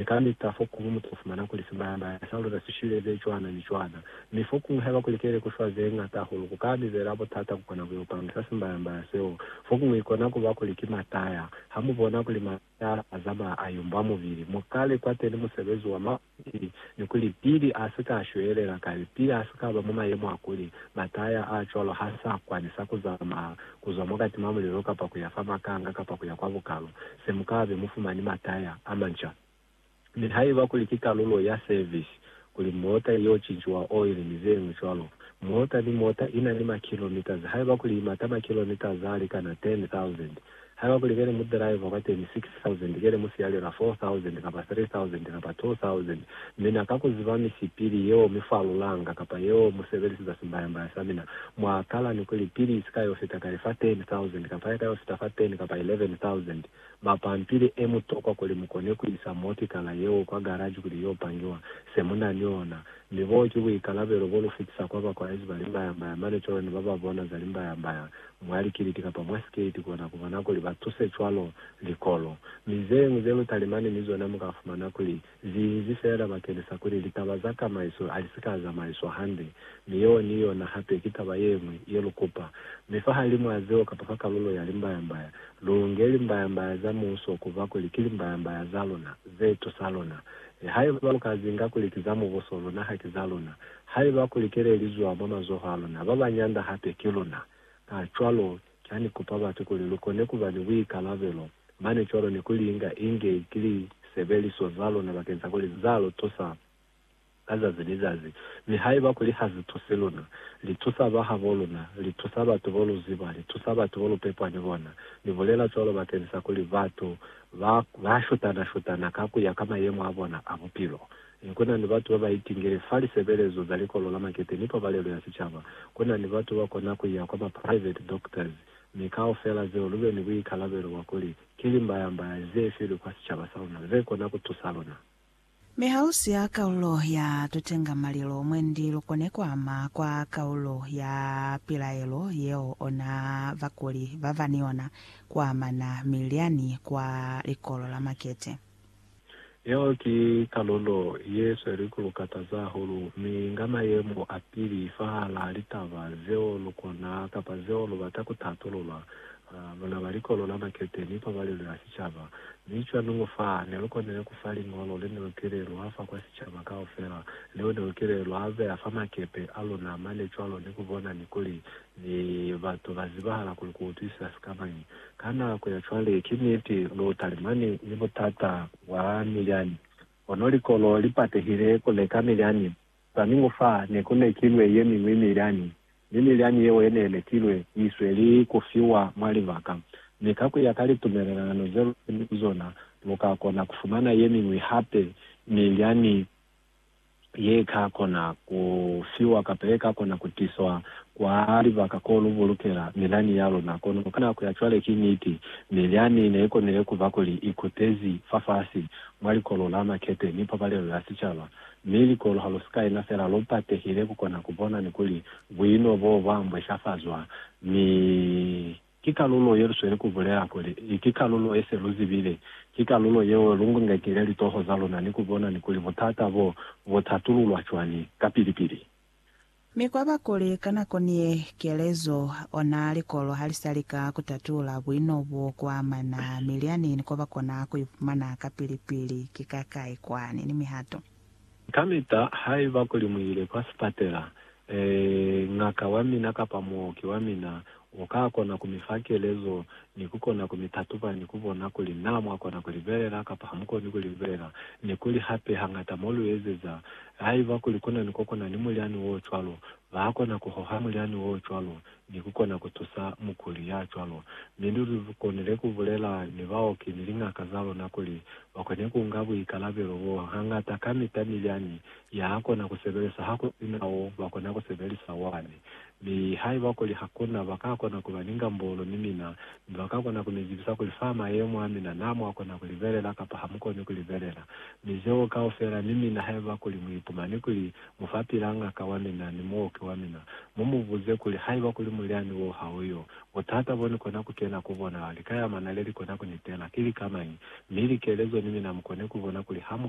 Ni ka lika fokuñwi mu to fumana kuli simbaya-mbaya sa ku luza si shwile ze cwana ni cwana. Mi fokuñwi haiba ku likile ku shwa ze ñata hahulu, ku ka bizela botata ku kona ku yo pamisa simbaya-mbaya seo. Fokuñwi ikona ku ba kuli ki mataya. Ha mu bona kuli mataya a zamaya a yumbwa mubili, mu ka li kwateni musebezi wa mabili ni kuli pili a si ka shwelela kale, pili a si ka ba mwa mayemo a kuli, mataya a cwalo ha sa kwanisa ku zamaya ku zwa mwa kati mwa mulelo kapa ku ya fa makanga kapa ku ya kwa bukalo, se mu ka be mu fumani mataya a manca. Mi haiba kuli ki kalulo ya service, kuli mota i yo cinciwa oili ni ze ñwi cwalo, mota ni mota i na ni makilometres, haiba kuli i mata makilometres a likana 10,000, haiba kuli be ni mudriver kwateni 6,000, thousand, kele mu sialela four thousand, kapa three thousand, kapa two thousand, mina ka kuziba misipili yeo mi falulanga, kapa yeo mu sebeliseza simbayambaya sa mina, mwa kala ni kuli, pili isika yo fita kale fa ten thousand, kapa yaka yo fita fa ten kapa eleven thousand, ba pampili e mu tokwa kuli mu kone ku isa moti kala yeo kwa garaji kuli yo pangiwa, se mu na ni ona. Mi boo ki buikalabelo bo lu fitisa kwa ba kwaezi ba limbayambaya, mane cwalo ni ba ba bona za limbayambaya, Mwa likiliti kapa mwa siketi kona kubona kuli ba tuse cwalo likolo. Mi zeñwi ze lu talimani ni zona muka fumana kuli zi inzi feela bakeni sa kuli litaba za kamaiso ali si ka zamaiswa hande. Mi yeo ni yona hape ki taba yeñwi ye lu kupa. Mi fahalimwa zeo kapa fa kalulo ya limbayambaya, lu nge limbayambaya za Muuso kuba kuli ki limbayambaya za luna, ze tusa luna. Haiba lu ka zinga kuli ki za Mubuso, luna haki za luna. Haiba kuli kele lizwa mwa mazoho a luna, ba ba nyanda hape ki luna. Kacwalo, kya ni kupa batu kuli lu kone kuba ni buikalabelo mane cwalo ni ku li inga inge ki lisebeliso za luna bakeng sa kuli za lu tusa ka zazi ni zazi. Mi haiba kuli ha zi tusi luna, li tusa ba habo luna, li tusa batu bo lu ziba, li tusa batu bo lu pepwa ni bona. Ni bulela cwalo bakeng sa kuli batu ba, ba shutana-shutana ka ku ya ka mayemo a bona a bupilo. Mi ku na ni batu ba ba itingile fa lisebelezo za likolo la makete ni pabalelo ya sicaba. Ku na ni batu ba kona ku ya kwa ma private doctors. Mi kaufela zeo lu be ni buikalabelo bwa kuli, ki limbaya-mbaya ze filwe kwa sicaba sa luna ze kona ku tusa luna. Mi ha lu siya kaulo ya tutengamalilo, mwendi lu kone ku ama kwa kaulo ya pilaelo yeo ona bakuli ba ba ni yona ku amana mi lyani kwa likolo la makete. Yeo ki kalulo ye sweli ku lu kataza hahulu, mi inga mayemo a pili fahalaa litaba zeo lu kona kapa zeo lu bata ku tatulula, luna ba likolo la makete ni pabalelo ya sicaba. Mi cwani ngo fa ne lu konile ku fa liñolo le ne lu kile lwa fa kwa sicaba kaufela, leo ne lu kile lwa beya fa makepe a luna mane cwalo ni ku bona ni kuli ni batu ba zibahala kuli ku utwisisa sikamañi Ka nako ya cwale, ki niti, lu talimani ni butata bwa milyani. Kono likolo li patehile ku leka milyani. Swaningu fa, ne ku lekilwe ye miñwi milyani, mi milyani yeo ye ne lekilwe i sweli ku fiwa mwa libaka. Mi ka ku ya ka litumelelano ze lu kene ku zona, lu ka kona ku fumana ye miñwi hape milyani ye ka kona ku fiwa kapa ye ka kona ku tiswa kwa libaka ko lu bulukela milyani ya luna. Kono ka nako ya cwale ki niti, milyani ne i konile ku ba kuli i kutezi fafasi mwa likolo la makete ni pabalelo ya sicaba, mi likolo ha lu si ka ina fela lu patehile ku kona ku bona ni kuli buino boo bwa mbweshafazwa mi Ki kalulo ye lu sweli ku bulela kuli, I ki kalulo ye se lu zibile. Ki kalulo yeo lu ngekile litoho za luna ni ku bona ni kuli butata bo bu tatululwa cwani kapili-pili. Mi kwa ba kuli ka nako ni ye, kelezo, ona likolo ha li sa lika ku tatula buino bo kwa amana milyani ni ko ba kona ku i fumana kapili-pili, ki ka kai kwani ni mihato. Kamita haiba kuli muile kwa sipatela, ngaka wa mina kapa muoki wa mina ukakona kumifa kelezo ni kukona kumitatuba ni kubona kuli na mwakona kulibelela kapa hamukoni kulibelela, ni kuli hape hangata moluezeza. Haiba kuli kunani kokona ni mulyani wocwalo, bakona kuhoha mulyani wocwalo ni ku kona ku tusa mukuli ya cwalo. Mi luli lu konile ku bulela ni baoki ni liñaka za luna kuli ba kone ku nga buikalabelo b'o. Hañata kamita milyani ya ha kona ku sebelisa ha ku si na wo ba kona ku sebelisa wani. Mi haiba kuli ha ku na, ba ka kona ku ba ni ngambolo ni mina, mi ba ka kona ku mi zibisa kuli fa mayemo a mina naa mwa kona ku libelela kapa ha mu koni ku libelela. Mi zeo kaufela ni mina haiba kuli mu ipumani kuli mufapila ngaka wa mina ni muoki wa mina, mu mu buze kuli, Haiba kuli mulyani wo ha u yo, butata bo ni kona ku kena ku bona, lika ya mana le li kona ku ni tela, ki lika mañi? Mi likelezo ni mina mu kone ku bona kuli ha mu